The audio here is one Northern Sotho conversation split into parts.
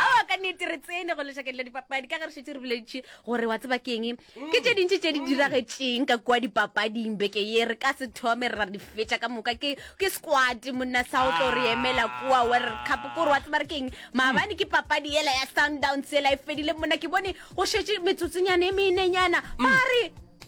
awa ka nnete re tsene go lešakeng la dipapadi ka ge re šetse re boleditše gore wa tseba keng ke tše dintši tše di diragetšeng ka kua dipapading beke ye re ka se thome ra di fetša ka moka ke ke squad monna sa o tlo re emela kua world cup kore wa tseba re keng maabane ke papadi yela ya sundowns yela e fedile monna ke bone go šetše metsotsonyane e meenenyana ba re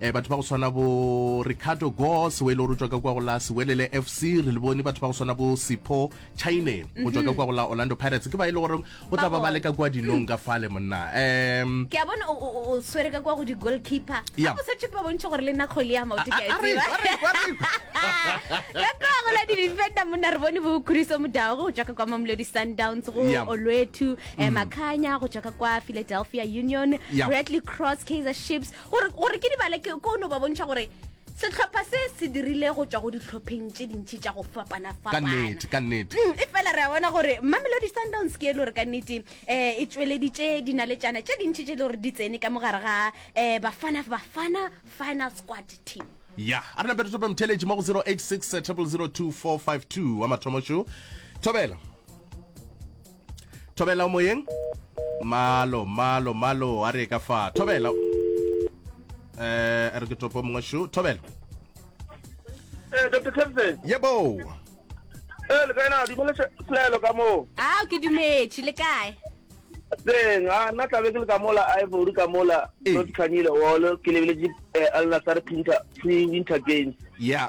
Batho ba go swana bo Ricardo Goss, we le gore o tšwa ka kwa go la Sewelele FC, re le bone. Batho ba go swana bo Sipho Chaine, go tšwa ka kwa go la Orlando Pirates, ke ba e le gore go tla ba ba le ka kwa dinong ka fale, monna. Um. Ke a bona o swere ka kwa go di-goalkeeper. Yeah. Go sa tšhe ke ba bontšhe gore le nna kgwele ya maoto ke a e tseba. A re, a re, a re. Ka kwa go la di-defender, monna, re bone bo Khuriso Mudau, go tšwa ka kwa Mamelodi Sundowns, go Yeah. Olwethu, eh, Makhanya, go tšwa ka kwa Philadelphia Union, Yeah. Bradley Cross, Kaizer Chiefs, gore gore ke di bale ke ko no ba bontšha gore setlhopha se se dirile go tswa go ditlhopheng tše dintšhi tša go ka nnete ka fapana-fapana nnete Mm, e fela re a bona gore mamelodi sundowns ke e le gore ka nnete um e tsweleditše dinaletšana tše dintšhi tše e le gore di tsene ka mogare ga um bafana bafana final squad team ya a re nape re tope motheletši mo go 086 0002452 wa mathomo šo thobela thobela o moyeng malo malo malo a re ka fa thobela eh a re ke topo mongwe shu thobela eh dr captain yebo eh le kaena di bole selo ka mo ah ke dumetše le kae teng a nna tlabe ke le ka mola ivory ka mola not khanyile wolo ke lebeletse eh, al nasar pinter pre winter games yeah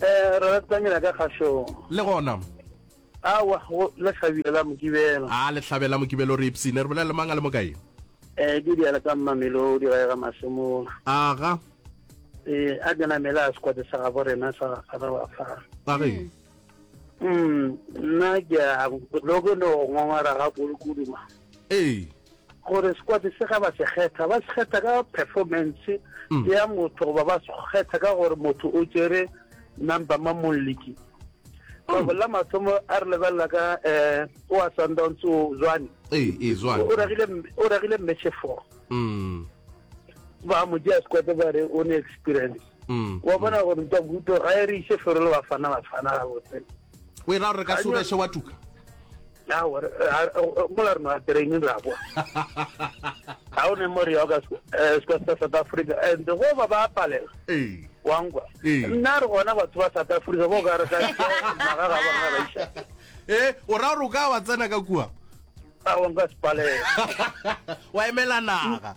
Eh, re ratanyela ka kgašong. Le gona. Awa, go le hlabile la Mokibelo. A le hlabela Mokibelo re ipsine, re bolela le mang a le mo kae? Eh, ke diala ka Mmamelodi ga e ga Masemola. Aga. Eh, a ke namele a sekwate sa gabo rena sa gafara wa fa. Ba ge. Mm, nna ke a lo ke no ngongora ga kudu kudu ma. Ee. gore sekwate se ga ba se kgetha ba se kgetha ka performance mm. ya motho goba ba se kgetha ka gore motho o tsere number ma molliki ka mm. bolla mathomo a re lebelela ka um o a sundowns o zwane o ragile mmeche four mm. ba mo jea sekwate ba re o ne experience wa bona gore ntabuto ga e re ise fero le bafana bafana gabotse o e ra gore re ka se obeshe wa tuka mola re noa training ra boa ga o ne more ya ka eh, seka sa south africa and go ba ba palela wangwa nna re gona batho ba south africa bo ka re ka maga ga bona ba isa e o ra gore o ka wa tsena ka kua a wa nka sepalela wa emela naga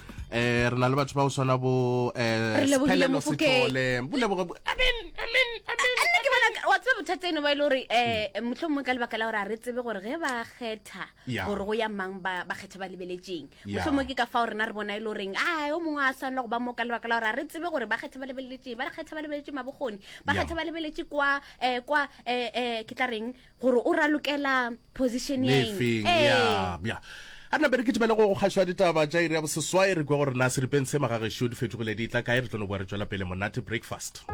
eh re na le batho ba go swana bo eh Sphelelo Sithole boleboge amen amen amen nna ke bona wa tseba bothata eno ba e le gore um motlho mongwe ka lebaka la gore a re tsebe gore ge ba kgetha Yeah. gore go ya mang ba ba kgetha ba lebeletseng Yeah. motlho mongwe ke ka fao rena re bona e le goreng a o mongwe a swanela go ba mo ka lebaka la gore a re tsebe gore ba kgetha ba lebeletseng ba kgetha ba lebeletse mabokgoni ba Yeah. kgetha ba lebeletse kwa um kwa um ke tla reng gore o ralokela position ya eng Nefeng, Ee. ya, ya. a nna bere ke tibele go go kgašo ya ditaba tša iri ya boseswai re kwa gore na seripeng se magagešu di fetogile di tla kae re tlo no boa re tšwela pele monate breakfast